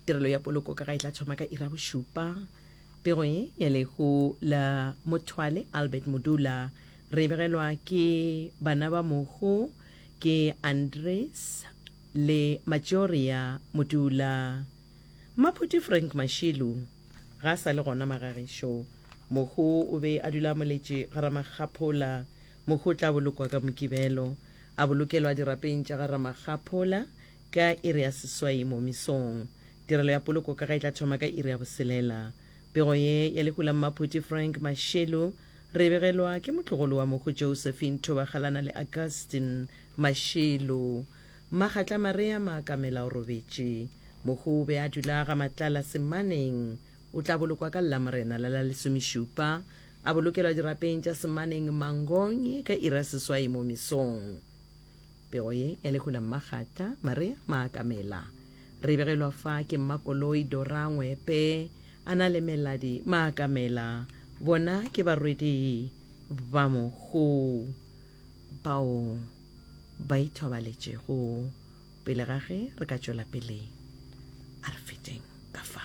Tirelo ya poloko ka ga e tla thoma ka ira bošupa. Pego ye ya lehu la Mothwale Albert Modula re e begelwa ke bana ba mohu ke Andres le Matšoria Modula. Mmaphuti Frank Mashilu ga a sa le gona magagešu. Mohu o be a dula a moletše ga Ramakgaphola. Mohu o tla bolokwa ka Mokibelo. A bolokelwa dirapeng tša ga Ramakgaphola Ka iri ya seswai mo mesong. Tirelo ya poloko ka ga e tla thoma ka iri ya boselela. Pego ye ya lehu la Mmaphuti Frank Mashelu re e begelwa ke motlogolo wa mokgo Josephine Thobagalana le Augustine Mashelu. Magatla Marea Maakamela o robetše. Mokgo o be a dula ga Matlala Semaneng. O tla bolokwa ka Lamorena la la lesomešupa, a bolokelwa dirapeng tša Semaneng Mangogne ka iri ya seswai mo mesong. Pego ye ya lehu la Mmagata, Maria Maakamela. Re begelwa fa ke Mmakoloi Dora Ngwepe, a na le Meladi Maakamela. Bona ke barwedi ba mohu bao ba ithobaletšego. Pele ga ge re ka tšwela pele, a re fetšeng ka fa.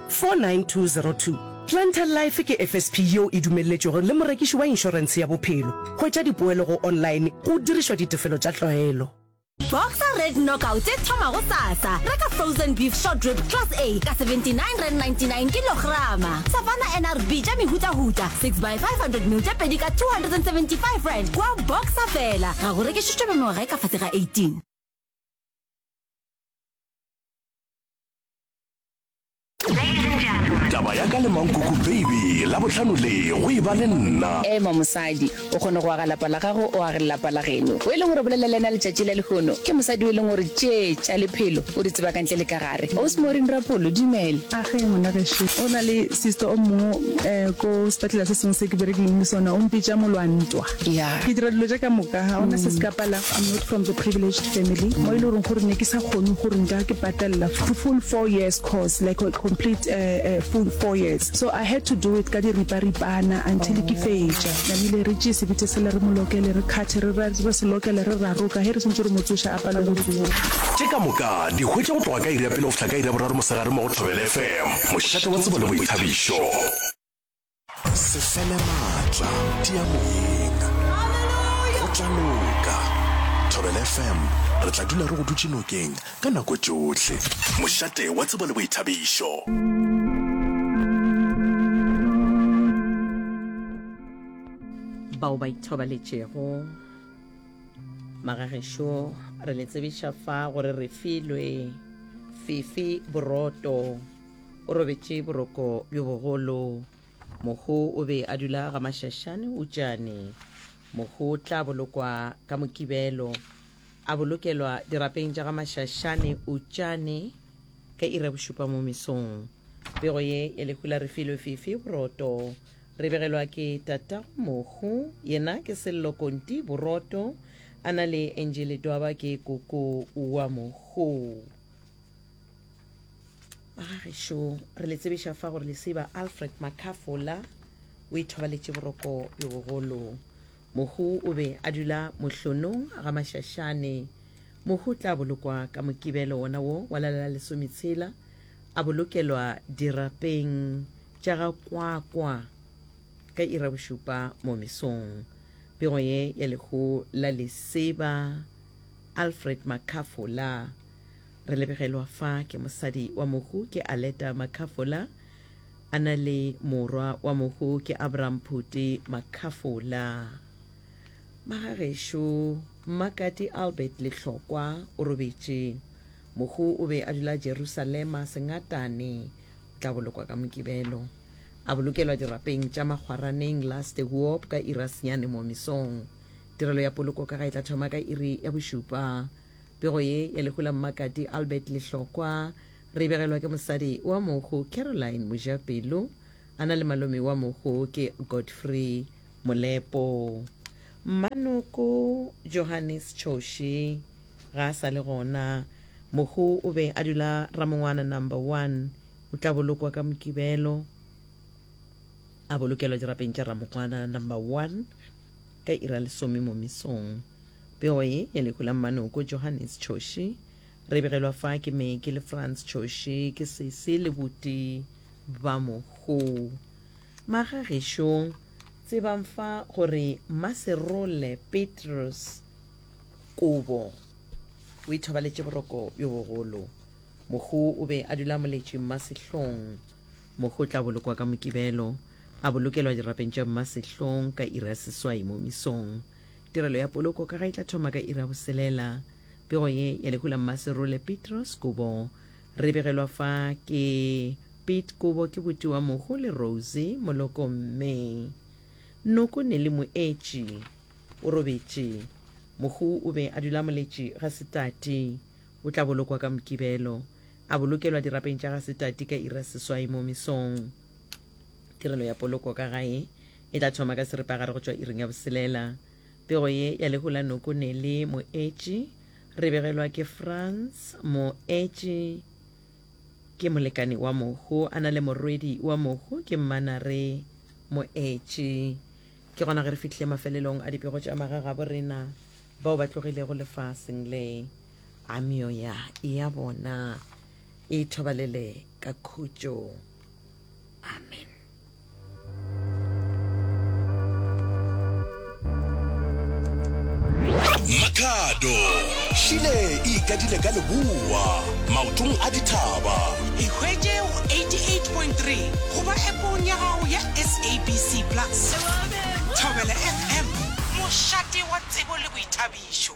49202. Planter Life ke FSP yeo e dumelletšwego le morekiši wa inšorense ya bophelo. Hwetša dipoelo go online go dirišwa ditefelo tša tlwaelo. Boxer Red Knockout e thoma go sasa. Reka frozen beef short rib class A ka 79 rand 99 kilograma. Savannah NRB tša mehutahuta 6 by 500 ml tše pedi ka 275 rand kua Boxer fela. Ga go rekišišwe ba mengwaga e ka fase ga 18. taba ya ka le mankoko baby la bohlano le go e ba le nna ema mosadi o kgone go aga lapa la gago o age lelapa la geno o e leng gore bolela le ena letšatši la lehono ke mosadi o e leng gore tše tša lephelo o di tseba ka ntle le ka gare osmorin rapolo dumele age ngwanagešo o na le sister o mongwe um ko sepetlele se sengwe se ke berekileng le sona o mpitša molwantwa Yeah. ke dira dilo tša ka moka ga ona se se ka palang i'm not from the privileged family mo e le goreng gore ne ke sa kgone gore nka ke patalela the full four years course like a complete uh, uh, full four years so i had to do it ka diriparipana until ke fetša namile re tšee sebitse sele re molokele re kgathe re ra- re se lokele re raroka ge re sentse re motsoša a pale go tsoa ke ka moka di hwetša go tloga ka iri ya pele go fihla ka iri ya boraro mosegare mo go thobela fm mošate wa tsebo le boithabišo se fele maatla tia moyeng go tla loka thobel fm re tla dula re go dutse nokeng ka nako tšohle mošate wa tsebo le boithabišo bao ba ithobaletšego magagešo re le tsebiša fa gore re filwe fifi boroto O robetše boroko bjo bogolo. Mohu o be a dula ga mašašane utšane. Mohu o tla bolokwa ka mokibelo. A bolokelwa dirapeng tša ga mašašane utšane ka ira bošupa mo mesong. Pego ye ya lehu la re filwe fifi boroto. Re begelwa ke tatago mohu, yena ke sello konti boroto, a na le enjele dwaba ke koko wa mohu. ba ga gešo re le tsebiša fa gore leseba alfred makafola o ithobaletše boroko le bogolo mohu o be a dula mohlonong ga mašašane mohu tla bolokwa ka mokibelo wona wo wa lala la lesometshela a bolokelwa dirapeng tša ga kwakwa ka ira bošupa mo mesong pego ye ya lehu la leseba alfred makafola Re lebegelwa fa ke mosadi wa mohu ke Aleta Makhafola, a na le morwa wa mohu ke Abraham Phuti Makhafola. Magagešo Mmakati Albert Lehlokwa o robetše. Mohu o be a dula Jerusalema Sengatane, o tla bolokwa ka Mokibelo. A bolokelwa dirapeng tša Makgwaraneng Laste Huop ka iri ya senyane mo mesong. Tirelo ya poloko ka ga e tla thoma ka iri ya bošupa Pego ye ya lehu la Mmakati Albert Lehlokwa re e begelwa ke mosadi wa mohu Caroline Mojapelo a na le malome wa mohu ke Godfrey Molepo. Mmanoko Johannes Choshi ga a sa le gona. Mohu o be a dula Ramongwana Number One. O tla bolokwa ka Mokibelo a bolokelwa dirapeng tša Ramongwana Number One. Ka iri ya lesome mo mesong, pego ye ya lehu la mmanoko Johannes Choshi, re begelwa fa ke Meki le Franz Choshi, ke sesi le buti ba mohu. Maga gešo, tsebang fa gore Mmaserole Petrus Kobo o ithobaletše boroko bjo bogolo. Mohu o be a dula moletše mmasehlong. Mohu o tla bolokwa ka Mokibelo, a bolokelwa dirapeng tša mmasehlong ka iri ya seswai mo mesong. Tirelo ya poloko ka ga e tla thoma ka iri ya boselela. Pego ye ya lehu la Mmaserole Petros Kubo re begelwa fa ke Pete Kubo ke buti wa mohu le Rose Moloko Mme Noko Nelly Moetši o robetše. Mohu o be a dula a moletše ga Setati. O tla bolokwa ka Mokibelo. A bolokelwa dirapeng tša ga Setati ka iri ya seswai mo mesong. Tirelo ya poloko ka gae e tla thoma ka seripagare go tšwa iring ya boselela. Pego ye ya lehu la noko ne le Moetši, re begelwa ke Franz. Moetši ke molekane wa mohu, a na le morwedi wa mohu, ke mmana re Moetši. Ke gona ge re fihlile mafelelong a dipego tša magagabo rena. Bao ba tlogilego lefaseng le, a meoya ya bona e thobalele ka khutšo. Amen. Makhado šile e ikadile ka leboa maotong a dithaba. Ikhwetše go 88.3 goba epong ya gago ya SABC Plus. Thobela FM, mošate wa tsebo le boithabišo.